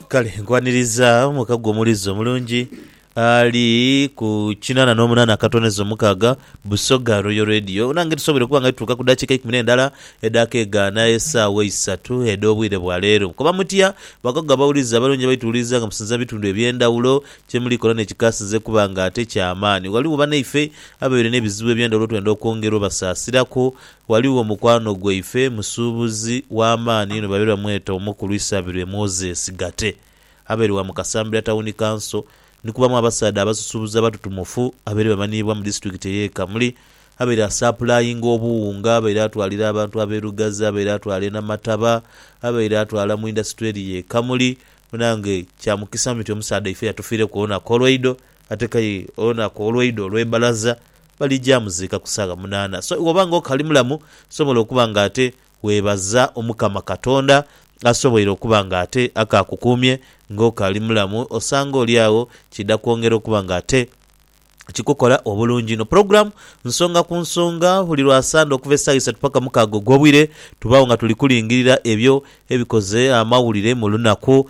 kale nkwaniriza muka gwe omulizi omulungi ali ku kinana n'omunana akatoneza omukaaga busoga royo radio nange tusobole okuba nga tutuuka ku dakiika ikumi n'endala edaka egaana esaawa eisatu ed'obwire bwa leero koba mutya bakago abawulizi abalungi abaituwuliriza nga musinza bitundu eby'endawulo kyemuli kola nekikasinze kuba nga ate kyamaani waliwo banaife ababeire n'ebizibu eby'endawulo twenda okwongera obasaasiraku Ghaligho mukwano gwaife musuubuzi w'amaani inho babaire bamweta Omukulu Isabirwe Moses Gate abaire wa mu Kasambira Tawuni Kanso ni kubamu abasaadha abasusubuzi abatutumufu abaire bamanhiibwa mu disitulikiti ey'e Kamuli abaire asaapulayinga obuwunga, abaire atwalira abantu ab'e Lugazi, abaire atwala e Namataba, abaire atwala mu indasitule eri y'e Kamuli. Munange kya mukisa inho nti omusaadha ife yatufiireku olunaku olweidho ate k'aye olunaku olweidho olw'ebbalaza Baligya muziika ku saagha munaana. So iwe obanga okali mulamu, sobola okuba nga ate webaza Omukama Katonda asoboire okuba nga ate akaakukuumye nga okali mulamu. Osanga oli agho kiidha kwongera okuba nga ate kikukola obulungi inho. Pulogulaamu nsonga ku nsonga buli lwa Sande okuva esaawa isatu paka mukaaga ogw'obwire. Tubaagho nga tuli kulingirira ebyo ebikoze amawulire mu lunaku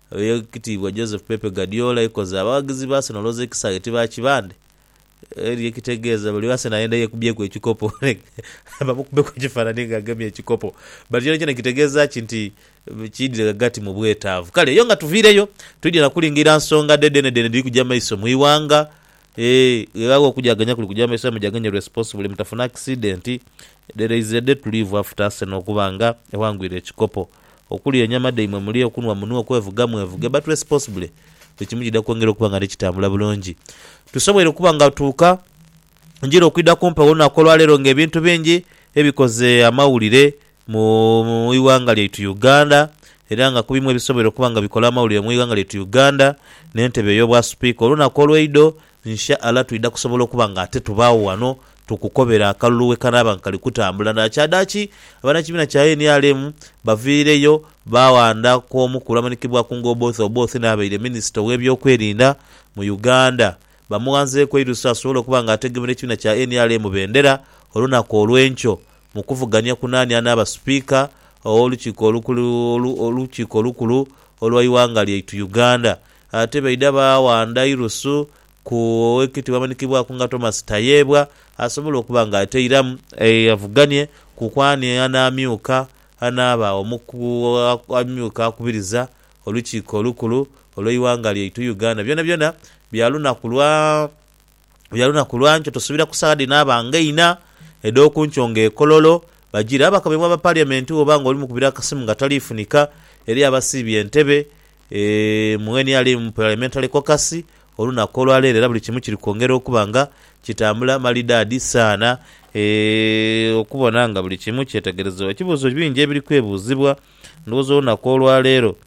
Eyekitiibwa Josep Pepe Guardiola yekoze abawaghizi ba Arsenal olwoza ekisaghe ti ba kibandhe eri ekitegeeza buli Arsenal ayenda yekubyeku ekikopo bamukubeku ekifanani nga agemye ekikopo but kyonakyona kitegeeza ki nti kiidhire ghagati mu bwetaavu kale eyo nga tuviireyo twidhye na kulingiira nsonga dhe dhenedhene edhiri kuja maiso mu ighanga eeh gheghaagho okujaganya kuli kuja maiso aye mujaganye responsibly mutafuna akisidenti dhere izire dhe tuliivu after Arsenal okuba nga eghangwire ekikopo. okulya enyama dhaimwe mulye, okunhwa munhwe, okwevuga mwevuge but responsibly buli kimu kidha kwongera okuba nga nikitambula bulungi. Tusobweire okuba nga tuuka njira okwidha kumpi olunaku olwaleero nga ebintu bingi ebikoze amawulire mu ighanga lyaitu Uganda era nga kubimu ebisobweire okuba nga bikola amawulire mu ighanga lyaitu Uganda n'entebe ey'obwasupiika olunaku olweidho Insha Allah twidha kusobola okuba nga ate tubaagho ghano tukukobera akalulu ghekanaaba nga kali kutambula. Dhakyadhaki abanakibiina kya nrm baviireyo baaghandaku omukulu amanhikibwaku nga Oboth Oboth n'abaire minisita ow'ebyokwerinda mu Uganda bamughanzeeku eirusu asobole okuba nga ategemera ekibiina kya nrm bendera olunaku olw'enkyo mu kuvugania ku naani anaaba Sipiika ow'olukiiko olukulu olwa ighanga lyaitu Uganda. Ate baidha baawandha irusu ku owekitibwa amanikibwaku nga Thomas Tayebwa asobole okuba nga ateiramu avuganie kuku ani anaamyuka anaaba omuku amyuka akubiriza olukiiko olukulu olweighanga lyaitu Uganda. Byonabyona bya lunaku lwa. Lula lunaku lwa nkyo tusubira ku saagha dhino abange inha edh'oku nkyo nga e Kololo bajire. Abakomyebwa ba Parliament woba nga oli mukubira akasimu nga taliifunika, eriyo abasiibye entebe mu nrm Parliamentary Caucus olunaku olwa leero era buli kimu kiri kwongera okuba nga kitambula malidaadi saana okubona nga buli kimu kyetegerezebwa. Ekibuuzo bingi ebiri kwebuuzibwa ndhowooza olunaku olwa leero.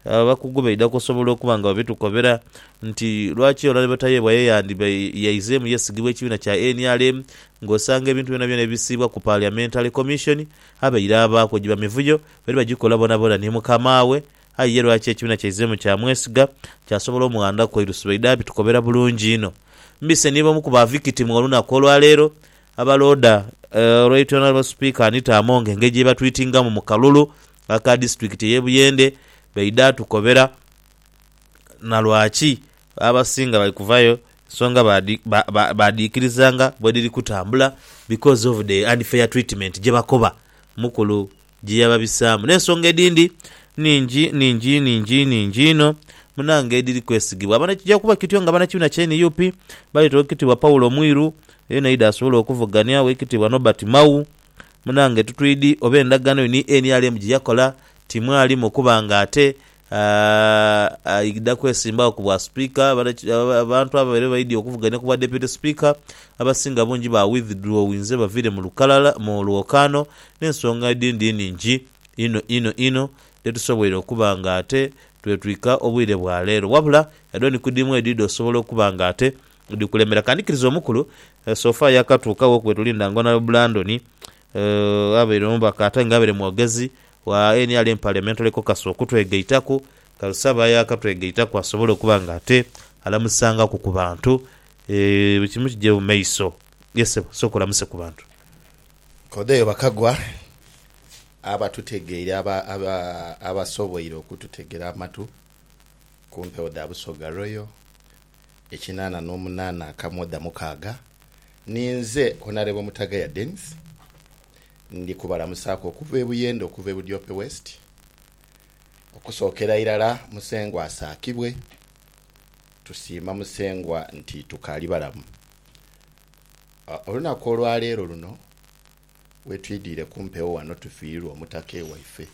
Abakugu baidha kusobola okuba nga babitukoobera nti lwaki Olale Batayeebwa ye yandhiba yaizeemu yesigibwa ekibiina kya nrm ng'osanga ebintu byonabyona ebisiibwa ku Parliamentary Commission abaire abaaku giba mivuyo bali bagikola boonaboona ni mukama we aye ye lwaki ekibiina kyaizeemu kyamwesiga kyasobola omughandaku eirusu baidha babitukoobera bulungi inho. Mbise ni b'omu ku ba victim olunaku olwaleero abalooda Right Honourable Speaker Anita Among engeri gye batwitingamu mu kalulu aka disitulikiti ey'e Buyende baidha tukobera na lwaki abasinga bali kuvayo ensonga baadhiikirizanga bwedhiri kutambula because of the unfair treatment gyebakoba mukulu gyeyababisaamu n'ensonga edhindi nhingi nhingi nhingi nhingi inho munange edhiri kwesigibwa abana. Kija kuba kityo nga banakibiina kya nup baleeta Oweekitiibwa Paul Mwiru yenayidha asobole okuvuganya Oweekitiibwa Norbert Mao Munange tutwidi oba endagaano yo ni nrm gye yakola timwalimu okuba nga ate aidha kwesimbagho ku bwa Sipiika. Abantu abo babaire baidhi okuvuganya ku bwa Deputy Speaker abasinga bungi ba withdrawinze baviire mu lukalala mu lwokaano n'ensonga edhindi nhingi inho inho inho dhe tusoboire okuba nga ate twetwika obwire bwa leero. Wabula yadho ni ku dhimu edhidha osobola okuba nga ate Dhikulemera kandikiriza omukulu so far yakatuuka wo kwetulinda nga Honourable Blandon abaire omubaka ate nga abaire mwogezi wa nrm Parliamentary Caucus okutwegaitaku kale so aba yakatwegaitaku asobole okuba nga ate alamusangaku ku bantu buli kimu kigye mu maiso yes sebo sooka olamuse ku bantu. Kodeyo Bakagwa abatutegeire abasoboire okututegera amatu ku mpewo dha Busoga Royal ekinaana n'omunaana akamwo dha mukaaga. Ninze Honourable Mutagaya Denis, ndi kubalamusaaku okuva e Buyende okuva e Budiope West. Okusookera irala Musengwa asaakibwe. Tusiima Musengwa nti tukaali balamu. Olunaku olwaleero luno Wetwidiire kumpewo wano tufiirirwa omutake waife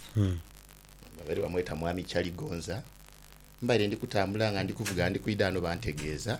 babaire bamweta Mwami Chaligonza. Mbaire ndi kutambula nga ndi kuvuga ndi kwidha ghano bantegeeza.